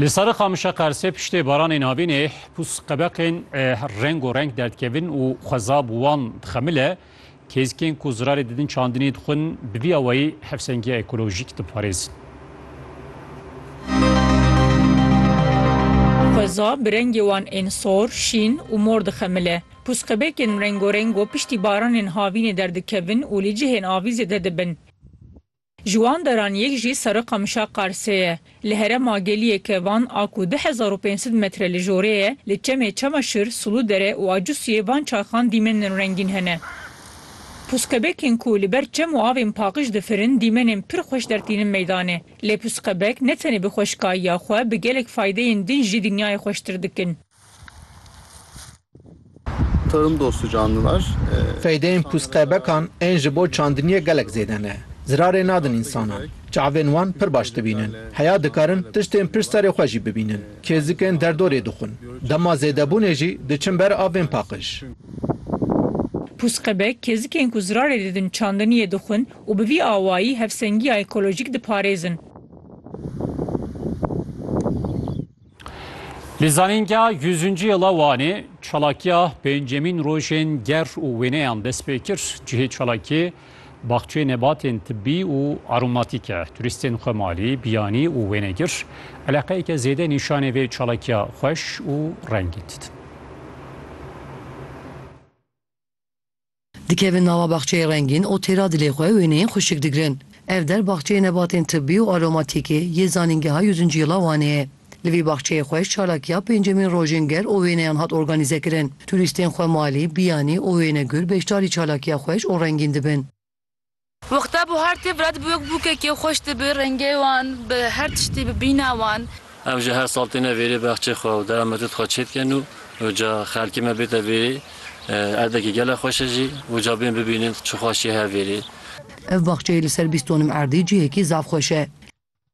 Li serê qamişa qersê piştê baranên havînê pûs qebeqên rengo renk derdikevin û xweza bi wan dixemile. Kêzikên ku zirarê didin çandinê dixwin bi vî awayî hevsengiya ekolojîk diparêzin. Xweza bi rengê wan ên sor, şîn û mor dixemile. Pûs qebekên rengo rengo piştî baranên havînê derdikevin û li cihên avî zêde dibin. Ji wan deran yek jî Sarıkamışa Qarsê ye. Li herem Agêliyê ke van a ku du hezar û pênc sed metre li jorê ye, li çemê Çamaşir, Suludere û Acusiyê van çarxan dîmenên rengîn hene. Pusqebekên ku li ber çem û avên paqij difirin dîmenên pir xweş dertînin meydanê. Lê pusqebek ne tenê bi xweşikayiya xwe bi gelek faydeyên din jî dinyayê xweştir dikin. Tarım dostu canlılar. Feydeyên pûsqebekan ên ji bo çandiniyê gelek zêde ne. Zirarê nadin însanan. Çavên wan pir baş dibînin. Heya dikarin tiştên pişt serê xwe jî bibînin. Kêzikên derdorê dixwin. Dema zêdebûnê jî diçin ber avên paqij. Pûsqebek kêzikên ku zirarê didin çandiniyê dixwin û bi vî awayî hevsengiya ekolojîk diparêzin. Li zanîngeha Yüzüncü Yıla Wanê çalakiya pêncemîn rojên ger û wêneyan dest pê kir. Cihê çalakiyê baxçeyê nebatên tibbî û aromatîk e. Turîstên xwemalî, biyanî û wênegir eleqeyeke zêde nîşanê vê çalakiya xweş û rengîn didin. Dikevin nava baxçeyê rengîn û têra dilê xwe wêneyên xwişik digirin. Ev der baxçeyê nebatên tibbî û aromatîkê yê Zanîngeha Yûzincîla Wanê ye. Li vî baxçeyê xweş çalakiya pêncemîn rojên ger û wêneyan hat organîzekirin. Turîstên xwemalî, biyanî û wênegur beşdarî çalakiya xweş û rengîn dibin. Wexta buhar tê vira dibe wek bûkekê xweş dibe rengê wan bi her tiştî bi bîna wan. Ev jî her sal têne vêrê baxçê xwe û dewa Medûd xwe çêdikin û ca xelkê me bête vêrê erdekê gelek xweş e jî û ca bên bibînin çi xweşî heye vêrê. Ev baxçeyê li ser bîst donim erdê cihekî zaf xweş e.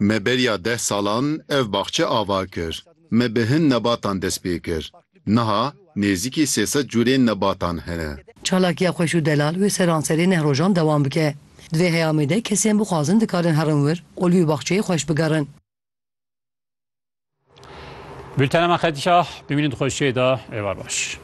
Me beriya deh salan ev baxçe ava kir. Me bi hin nebatan dest pê kir. Niha nêzîkî sê sed cûrên nebatan hene. Çalakiya xweş û delal wê seranserê neh rojan dewam bike. Di vê heyamê de kesên bixwazin dikarin herin wir û li wî baxçeyê xweş bigerin. Bültena me qedîya bimînin di xweşiyê de êvar baş.